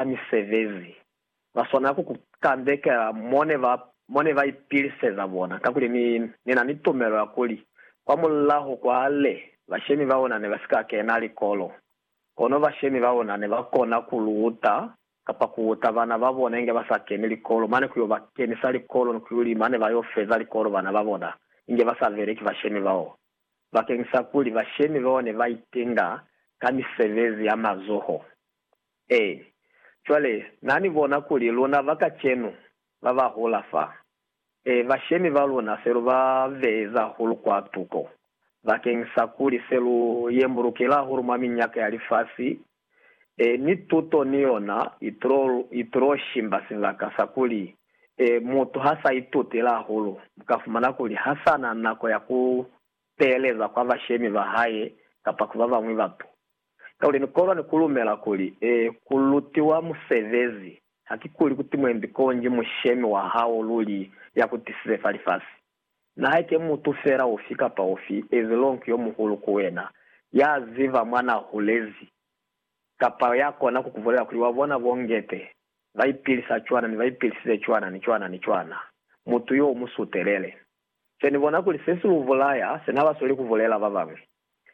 ka misebezi, ba swanela ku ku kandekela mo ne ba, mo ne ba ipiliseza bona, kakuli ni, ni na ni tumelo ya kuli, kwa mulaho kwa le, bashemi ba luna ne ba si ka kena likolo, kono bashemi ba luna ne ba kona ku lu uta, kapa ku uta bana ba bona inge ba sa keni likolo, mane ku yo ba kenisa likolo ni ku yo li, mane ba yo feza likolo bana ba bona inge ba sa beleki bashemi bao, bakeñisa kuli bashemi bao ne ba itenga ka misebezi ya mazoho. Ee. Cwale, Na ni bona kuli luna ba kacenu, ba ba hula fa, e, bashemi ba luna se lu ba beye za hulu kwa tuko, bakeng sa kuli se lu yembulukile hahulu mwa minyaka ya lifasi, e, ni tuto ni yona itulo, itulo shimba sibaka sa kuli, e, mutu ha sa itutile hahulu, mu ka fumana kuli ha sa na nako ya ku teeleza kwa bashemi ba hae kapa ku ba bañwi batu. Kakuli ni kolwa ni ku lumela kuli, ee, ku lutiwa musebezi, hakikuli kuti mwembi konji mushemi wa hao luli ya ku tisize fa lifasi. Na haike mutu fela ufi kapa ufi, as long yo muhulu ku wena, ya ziba mwa na hulezi, kapa ya kona ku ku bulela kuli, Wa bona bo Ngete, ba ipilisa cwana, ni ba ipilisize cwana, ni cwana, ni cwana, mutu yo u mu sutelele. Se ni bona kuli se si lu bulaya, se na ba sweli ku bulela ba bañwi.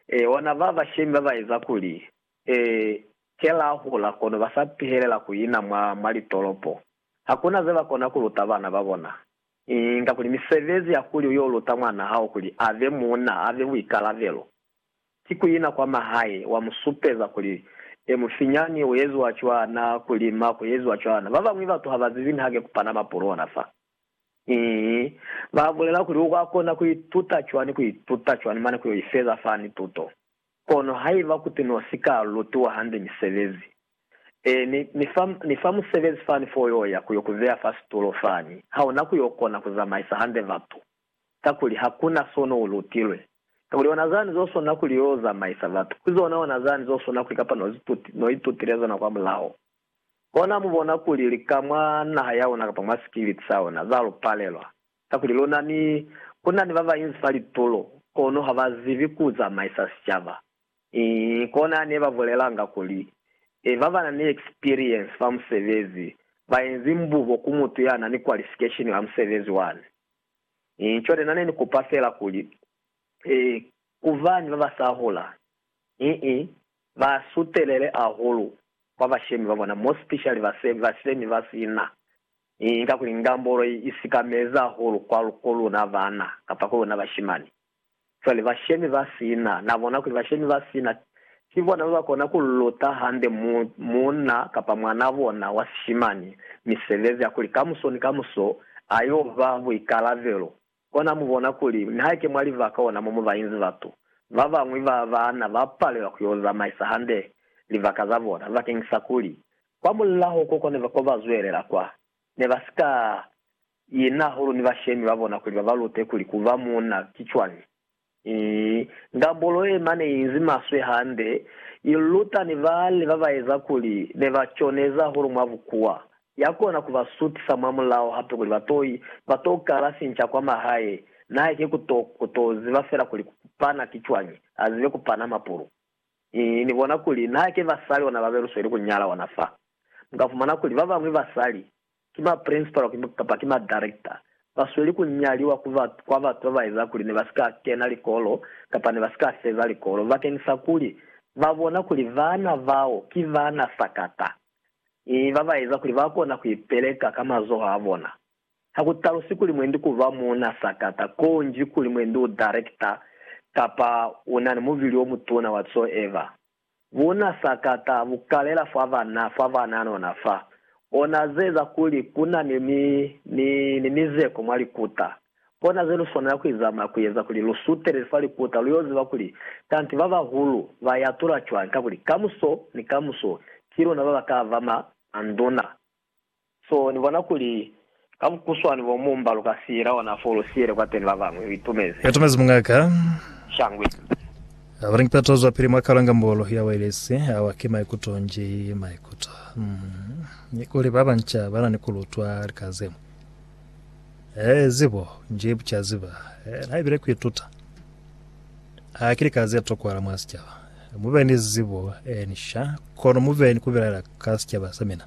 Ee, ona ba bashemi ba ba eza kuli, ee, ke la hula, kono ba sa pihelela ku ina mwa, mwa litolopo. Ha ku na ze ba kona ku luta bana ba bona. Inga kuli misebezi ya kuli u y'o luta mwan'a hao kuli a be muuna, a be buikalabelo, ki ku ina kwa mahae, wa mu supeza kuli, Ee, mufinyani, u eziwa cwana, ku lima ku eziwa cwana. Ba bañwi batu ha ba zibi niha ke ku pana mapulu ona fa. Ki ba bulela kuli u ka kona ku ituta cwani ku ituta cwani mane ku yo ifeza fani tuto. Kono haiba kuti no si ka lutiwa hande misebezi, ee, ni, ni fa, ni fa musebezi fani fo yo ya ku yo ku beya fa situlo fani, ha u na ku yo kona ku zamaisa hande batu, kakuli ha ku na so no u lutilwe. Kakuli ona zani zo swana kuli yo zamaisa batu, ki zona ona zani zo swana kuli kapa no zi tuti, no itutile zona kwamulaho. Ona mu bona kuli lika mwa naha ya ona kapa mwa sikiliti sa ona, za lu palelwa. Kakuli luna ni, ku na ni ba ba inzi fa litulo, kono ha ba zibi ku zamaisa sicaba. Ii, kona ne ba bulelanga kuli, E, ba ba na ni eksperiensi fa musebezi, ba inzi mbubo ku mutu ya na ni kwalifikesheni ya musebezi wani. Ii, cwale na ne ni kupa fela kuli, E, ku bani ba ba sa hula? Ii, Ba sutelele ahulu kwa bashemi ba bona, mo specially base, bashemi ba sina. I, inga kuli ngambolo i, i sikamezi ahulu kwa, ku luna bana, kapa ku luna bashimani. Cwale, bashemi ba sina, na bona kuli bashemi ba sina ki bona ba ba kona ku luta hande mu, munna kapa mwanaa bona wa sishimani misebezi ya kuli kamuso ni kamuso a yo ba buikalabelo Kona mu bona kuli nihaike mwa livaka ona mo mu ba inzi batu, ba bañwi ba baana ba palelwa ku yo zamaisa hande livaka za bona bakeñisa kuli kwa mulaho ko kone ko ba zwelela kwa ne ba si ka ina hahulu ni bashemi ba bona kuli ba ba lute kuli ku ba muuna ki cwañi. Ii, Ndabolo ye ma ne inzi maswe hande, i luta ni bali ba ba eza kuli ne ba coneza hahulu mwa bukuwa. Ya kona ku ba sutisa mwa mulao hape kuli ba to, ba to kala finca kwa mahae. Nae ki ku to, ku to ziba fela kuli ku pana ki cwañi, a zibe ku pana mapulu. Ii, Ni bona kuli naha ki basali ona ba be lu sweli ku nyala ona fa. Mu ka fumana kuli ba bañwi basali Ki ma principal kapa ki ma director ba sweli ku nyaliwa kwa batu ba ba eza kuli ne ba si ka kena likolo kapa ne ba si ka feza likolo bakeñisa kuli ba bona kuli bana bao ki bana sakata mi ba ba eza kuli ba kona ku ipeleka ka mazoho a bona. Ha ku talusi kuli mwendi ku ba muuna sakata ko nji kuli mwendi u director kapa u na ni mubili o mutuna whatsoever. Buna sakata bukalela fa banna fa bananona fa ona zeeza kuli kuna ni, ni, ni, ni mizeko mwa likuta. Kona ze luswanela kuizamaya kueza kuli lu sutelele fa likuta luyo ziba kuli kanti babahulu ba yatula cwañi, kakuli kamuso ni kamuso ki luna baba ka ba ma, manduna. So ni bona kuli ka bukuswani bo mu mba lu ka siyela ona fo lu siyele kwateni ba bañwi. U itumezi? U itumezi mungaka? Shangwe. Haba ni kipeto zwa pili mwa kalanga mbolo ya wailesi, awa ki maikuto nji maikuto. Mm. Ni kuli ba banca ba na ni ku lutwa lika ze ñwi. Ee, zibo, nji buca ziba. Ee, na ibile ku ituta. Ha ki lika ze tokwahala mwa sicaba. Mu be ni zibo, ee, ni sha, kono mu be ni ku bilaela ka sicaba sa mina.